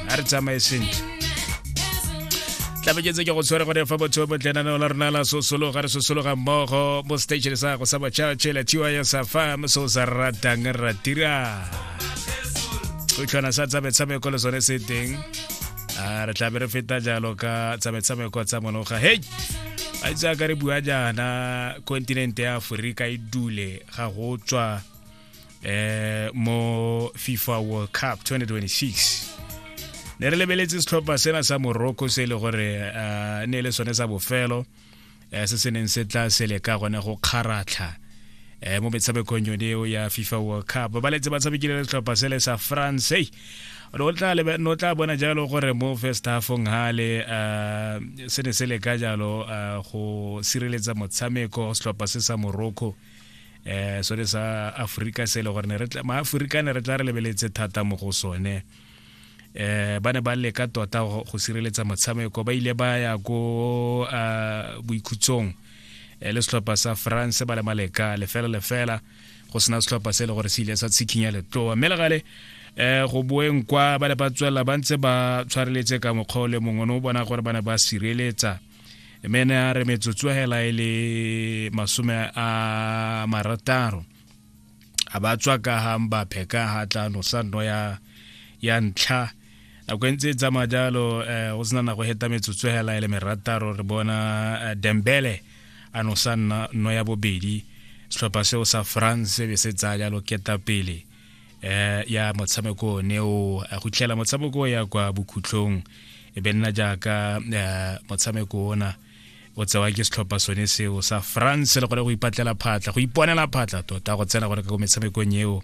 a re tsamaye sentle tlabeketse ke go tshwere gore fa botho bo tlenaneo la rona la sosologa re sosologa mmogo mo station sa go sa botšhatšhe la tys fam se o sa ratang ra dira setlhwana sa tsa metshameko le sone se teng a re tlabe re feta jalo ka tsa metshameko tsa monoga hei a itse a ka re bua jaana kontinente ya aforika e dule ga go tswa eh mo FIFA World Cup 2026 ne re lebeletse setlhopha sena sa morocco se e le gore eh, ne e le sone sa bofelo eh, se se neng se tla se leka gone go kgaratlha eh, mo metshamekong yone eo ya fifa world cup ba letse ba tshamekile le setlhopha se le sa france ei o tla lebe- no tla bona jalo gore mo first halfong hale uh, se ne se leka jalo uh, go sireletsa motshameko setlhopha se sa morocco eh so re sa Africa se le gore ne re ma Africa ne re tla re lebeletse thata mo go sone eh ba ne ba leka tota go sireletsa motshameko ba ile ba ya go a boikhutsong eh, le setlhopha sa France ba le maleka lefela lefela go sena setlhopha se le gore se ile sa tshikinya letloa mme le gale eh go boeng kwa ba le ba tswelela ba ntse ba tshwareletse ka mokgwa o le mongwe o ne o bona gore ba ne ba sireletsa mene a re metsotso hela e le masome a marataro a ba tswa ka ga mbape ka ga tlano sa nno ya ya ntlha nako e ntse e tsamaya jalo um go sena nako heta metsotso hela e le merataro re bona eh, dembele a no sa nno ya bobedi setlhopha seo sa france be se tsaya jalo keta pele eh ya motshameko o ne o go tlela motshameko ya kwa bokhutlong e be nna jaaka eh, motshameko ona o tsewa ke setlhopha sone seo sa france le gore go ipatlela phatla go iponela phatla tota go tsena gore ka ko metshamekong eo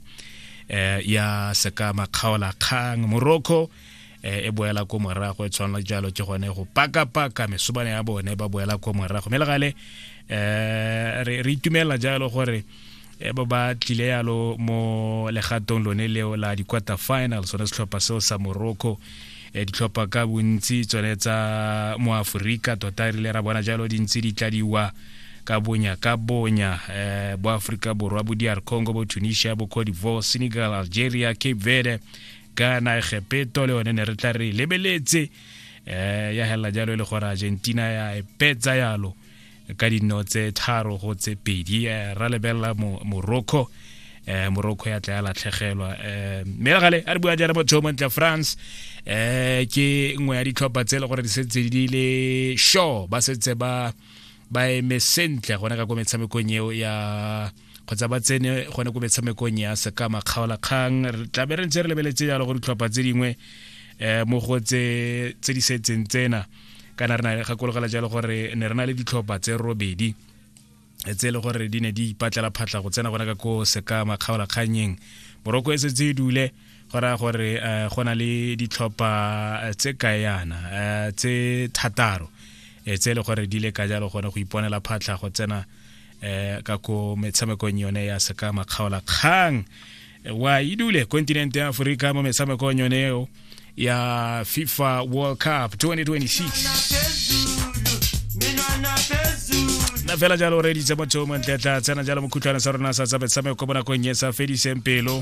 eh ya seka makgaola kgang morocco e boela ko morago e tshwana jalo ke gone go paka-paka mesobane ya bone ba boela ko morago mme le gale um re itumelela jalo gore e ba ba tlile yalo mo legatong lone leo la di-quarter final sone setlhopha seo sa morocco e ditlhopha ka bontsi tsone tsa mo aforika tota rile ra bona jalo dintsi di tladiwa ka bonya ka bonya eh, bo aforika borwa bo dr congo bo tunisia bo cote divoire senegal algeria cape verde ka na egepeto le one ne re tla re lebeletse um ya helela jalo e le gore argentina ya epetsa yalo ka dino tse tharo go tse pedi eh, ra lebelela morocco eh morocco ya tla ya latlhegelwa eh mme re gale a re bua jana motho mo ntle france eh ke nngwe ya ditlhopha tse e le gore di setse di le sure ba setse ba ba eme sentle gone ka ko metshamekong eo ya kgotsa ba tsene gone ko metshamekong ya sekama kgaolakgang re tla be re ntse re lebeletse jalo go ditlhopha tse dingwe um mo go tse di setseng tsena kana re na gakologela jalo gore ne re na le ditlhopha tse robedi tse e le gore di ne di ipatlela phatlha go tsena gona ka ko sekama kgaolakganyeng moroko e setse e dule go raya gore um go na le ditlhopha eh, tse kayana um eh, tse thataro tse e le gore di le ka jalo gone go iponela phatlha go tsena eh ka ko metshamekong yone ya seka makgaola kgang wa idule kontinente ya aforika mo metshamekong yone eo ya fifa world cup 2026 na fela jalo re ditse motho o montle tla tsena jalo mokhutlhwane sa rona sa tsa metshameko mo nakong e sa fediseng pelo